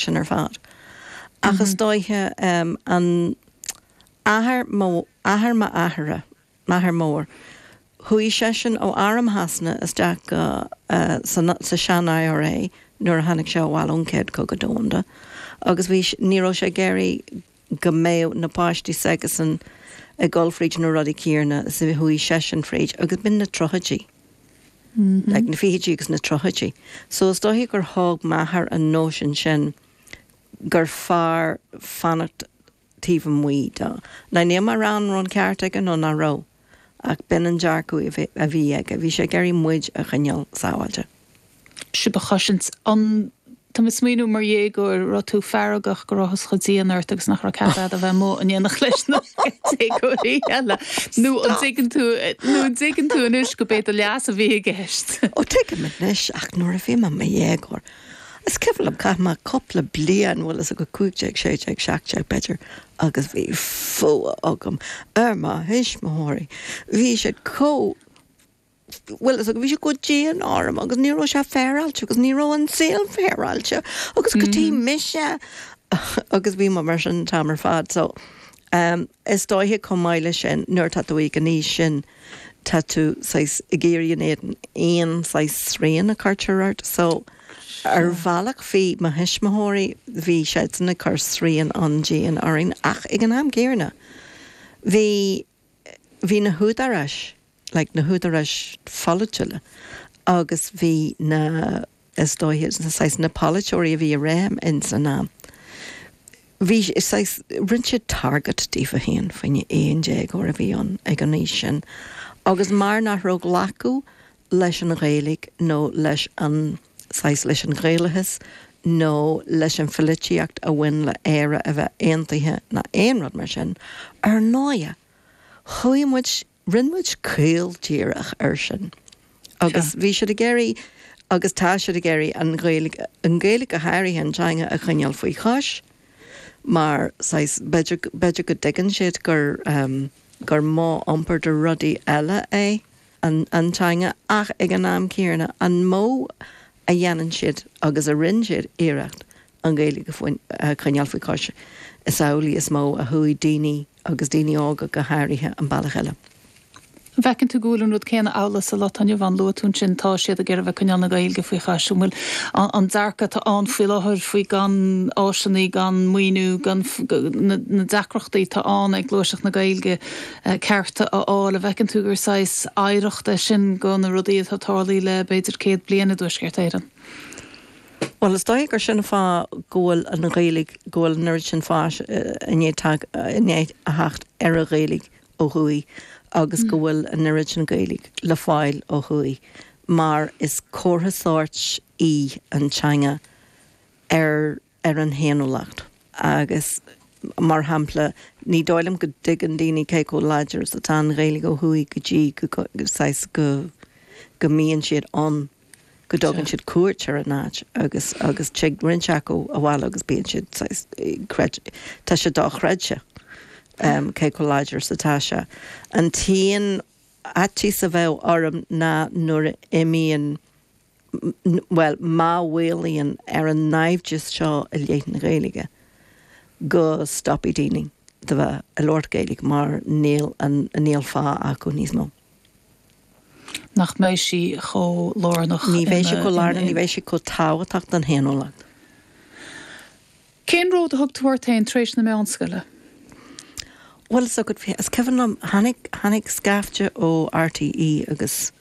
sin ar fad. Ach is dóiche an athair mo, athair m'athara, m'athair mór, chuaigh seisean ó Arm Shasana isteach go, san, sa sean IRA nuair a tháinig sé abhaile ón Céad Cogadh Domhanda agus bhí, ní raibh sé ag iarraidh go mbeadh na páistí s'aigesan ag dul fríd na rudaí céarna is a chuaigh seisean fríd agus b'in na tríochaidí, like na fichidí agus na tríochaidí. So is dóiche gur thóg m'athair an nóisean sin gur fearr fanacht taobh amuigh do, now níl mé ag rá an raibh an ceart aige nó nach raibh, Ach b'in an dearcadh a bhí aige. Bhí sé ag iarraidh muid a choinneáil sábháilte. Sibh a chosaint. An, tá mé ag smaoineamh mar dhéagóir, an raibh tú feargach go rabhthas chomh dian ort agus nach raibh cead a'd a bheith amuigh in éineacht leis na déagóirí eile. Nó an dtuigeann tú, nó an dtuigeann tú anois gurb é do leas a bhí i gceist? Ó, tuigim anois ach nuair a bhí mé i mo dhéagóir, is cuimhin liom, chaith mé cúpla bliain, bhfuil a fhios agat 15, 16, 17 b'fhéidir, agus bhí fuath agam ar mo thuismitheoirí. Bhí siad chomh, bhfuil a fhios, bhí siad chomh dian orm agus ní raibh sé féaráilte agus ní raibh an saol féaráilte agus cad tuige mise agus bhí mé mar sin an t-am ar fad. So, em, is dóiche chomh maith leis sin nuair atá tú ag an aois sin tá tú saghas ag éirí in éadan aon saghas srian a chuirtear ort. So. Ar bhealach bhí mo thuismitheoirí, bhí siadsan ag cur srian an-dian orainn ach ag an am céanna bhí, bhí na húdaráis, like na húdaráis pholaitiúla agus bhí na, is dóiche, saghas na polaiteoirí a bhí i réim in san am, bhí, saghas, rinne siad target díofa féin, fá choinne aon déagóir a bhí ann ag an aois sin agus mar nach raibh glacadh leis an Ghaeilge nó leis an saghas leis an Ghaelachas nó leis an phoilitíocht a bhain le Éire a bheith aontaithe ná aon rud mar sin. Ar ndóigh, chuaigh muid, rinne muid caol díreach air sin agus bhí siad ag iarraidh agus tá siad ag iarraidh an Ghaeilge, an Ghaeilge go háirithe, an teanga, a choinneáil faoi chois mar saghas, b'fhéidir, b'fhéidir go dtuigeann siad gur, gur modh iompair do rudaí eile é. an teanga ach ag an am céanna an modh a dhéanann siad agus a rinne siad iarracht an Ghaeilge a choinneáil faoi chois, is amhlaidh is mó a chuaigh daoine agus daoine óga go háirithe an bealach eile. An bhfeiceann tú go bhfuil an rud céanna amhlaidh sa lá atá inniu? Luaigh tú ansin tá siad ag iarraidh a bheith coinneáil na Gaeilge faoi chois. An bhfuil, an dearcadh atá ann faoi láthair faoi gan áiseanna, gan maoiniú, gan na deacrachtaí atá ann ag gluaiseacht na Gaeilge, cearta a fháil, an bhfeiceann tú gur saghas oidhreacht é sin de na rudaí atá tarlaí le b'fhéidir céad bliain i dTuaisceart Éireann? Bhuel, is dóigh gur sin an fáth go bhfuil an Ghaeilge, go bhfuil an oiread sin fáis i ndiaidh theacht ar an Ghaeilge ó thuaidh agus go bhfuil an oiread sin Gaeilge le fáil ó thuaidh mar is comhartha sóirt í an teanga ar ar an fhéiniúlacht agus, mar shampla, ní dóigh liom go dtuigeann daoine cé chomh láidir is atá an Ghaeilge ó thuaidh go dtí go, saghas, go, go mbíonn siad ann, go dtugann siad cuairt ar an áit agus, agus tig roinnt acu abhaile agus bíonn siad, saghas, tá sé dochreidte cé chomh láidir is atá sé. An t-aon fhaitíos a bheadh orm ná nuair a imíonn. bhuel, má mhaolaíonn ar an naimhdeas seo i leith na Gaeilge, go stopfaidh daoine de bheith ag labhairt Gaeilge mar níl an, níl fáth acu níos mó. nach mbeidh sí chomh lárnach. Ní bheidh sí chomh lárnach, ní bheidh sí chomh tábhachtach don fhéiniúlacht. Cén ród a thug tú ort féin tar éis na meánscoile? Bhuel, is cuimhin liom, tháinig, tháinig scaifte ó RTÉ agus,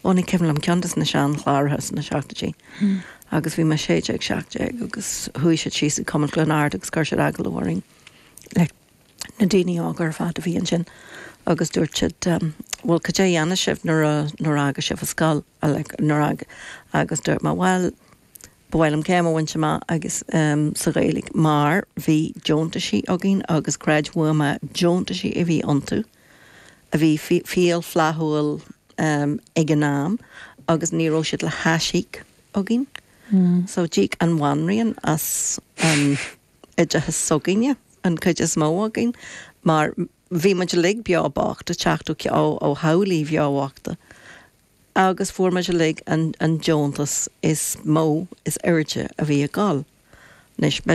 ó ní cuimhin liom, ceann de na seanchláraithe sna seachtaidí agus bhí mé sé déag, seacht déag agus chuaigh siad síos chuig Cumann Chluain Ard agus chuir siad agallamh orainn, like, na daoine óga ar fad a bhí ansin agus dúirt siad, bhuel, cad é a dhéanfaidh sibh nuair a, nuair a fhágfaidh sibh an scoil, like, nuair a fhágadh, agus dúirt mé, bhuel, Ba mhaith liom céim a bhaint amach agus sa Ghaeilge mar bhí deontaisí againn agus creid uaim na deontaisí a bhí iontu a bhí fial flaithiúil ag an am agus ní raibh siad le haisíoc againn so d'íoc an Bhanríon as an oideachas s'againne, an chuid is mó againn mar bhí muid uilig beo bocht ag teacht ó theaghlaigh bheo bhochta. agus fuair muid uilig an deontas is mó is airde a bhí ag dul. Anois.